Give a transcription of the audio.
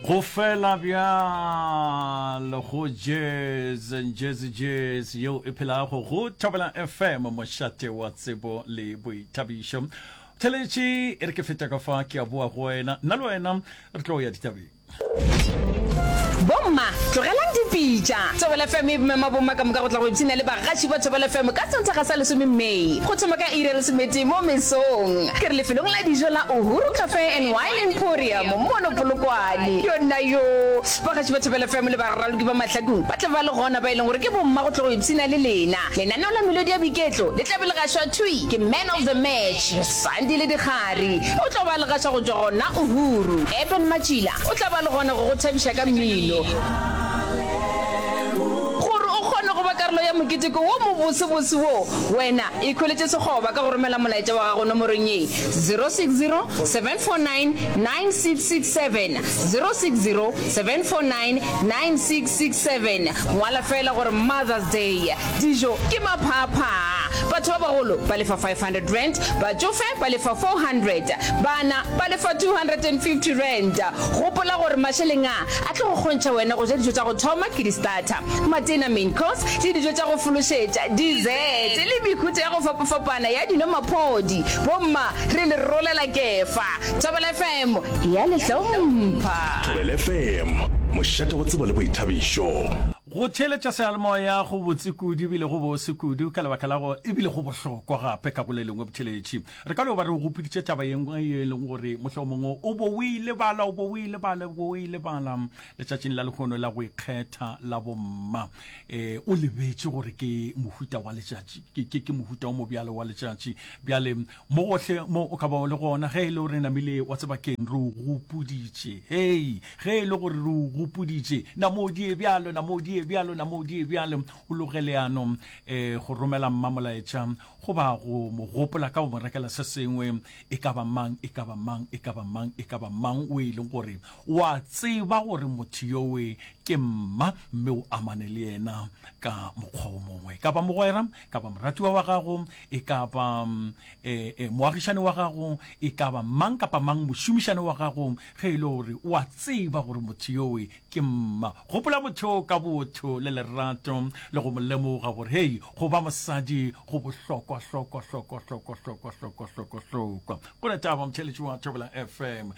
go fela bjalo go jazz jazz jazz yeo e phelago go thobela fm mošate wa tsebo le boithabišo theletše e re ke feta ka fa ke a boa go wena nna le wena re tlo ya ditabeng bomma tlogelang dipitša thobela fm e bomema bomma ka moka go tla go ipshina le bagaši ba thobela fm ka santaga sa lesome may go thoma ka iri ya lesometee mo mesong Ke re lefelong la dijo la Uhuru Cafe and Wine Emporium mono Polokwane. Yonnayoo! Bagatši ba Thobela FM le baraloki ba Mahladung ba tla ba le gona ba e leng gore ke bomma go tlo go ipshina le lena. Lenaneo la melodi ya boiketlo le tla be le gašwa thwi ke Man of the Match, Sandile Dikgari. O tlo ba le gaša go tšwa gona Uhuru. Eben Matšila o tla ba le gona go go thabiša ka mmino. Gore o kgone go ba karolo ya moketeko wo mobosobose wo, wena Ikhweletše sekgoba ka go romela molaetša wa gago nomorong ye, 0607499667, 0607499667. Ngwala feela gore Mother's Day, dijo ke maphaaphaa, batho ba bagolo ba lefa R500, batšofe ba lefa R400, bana ba lefa R250. Gopola gore mašeleng a a tlo go kgontšha wena go ja dijo tša go thoma ke di-starter. Matena, main course, le dijo tša go fološetša, dessert, le mehuta ya go fapafapana ya dino maphodi. Bomma, re le rolela kefa. Thobela FM e a le hlompha. Thobela FM, mošate wa tsebo le boithabišo. Go theeletša seyalemoya go botse kudu e bile go bose kudu ka lebaka la go e bile go bohlokwa gape ka go le lengwe botheeletši. Re ka no ba re o gopoditše taba ye nngwe ye e leng gore mohlomongwe o bo o e lebala, o bo o e lebala, o bo o e lebala. letšatšing la lehono la go ikgetha la bomma e o lebetše gore ke mohuta wa letšatši ke ke ke mohuta wa mobjalo wa letšatši bjale mo gohle mo o ka ba o le gona ge e le gore namile wa tseba keng re o gopoditše hei ge e le gore re o gopoditše namodie bjalo namodie bjalo namodie bjalo o loge leano um eh, go romela mmamolaetša go ba go mo gopola ka go mo rekela se sengwe e ka ba mang e ka ba mang e ka ba mang e ka ba mang o e leng gore O a tseba gore motho yowe ke mma, mme o amane le yena ka mokgwa wo mongwe. Kapa mogwera, kapa moratiwa wa gago, e ka ba e, e, moagišane wa gago, e ka ba mang kapa mang, mošomišane wa gago, ge e le gore o a tseba gore motho yowe ke mma. Gopola motho yoo ka botho le lerato, le go mo lemoga gore, hei, go ba mosadi go bohlokwa, hlokwa, hlokwa, hlokwa, hlokwa, hlokwa, hlokwa, hlokwa. Go na taba, motheeletši wa Thobela FM.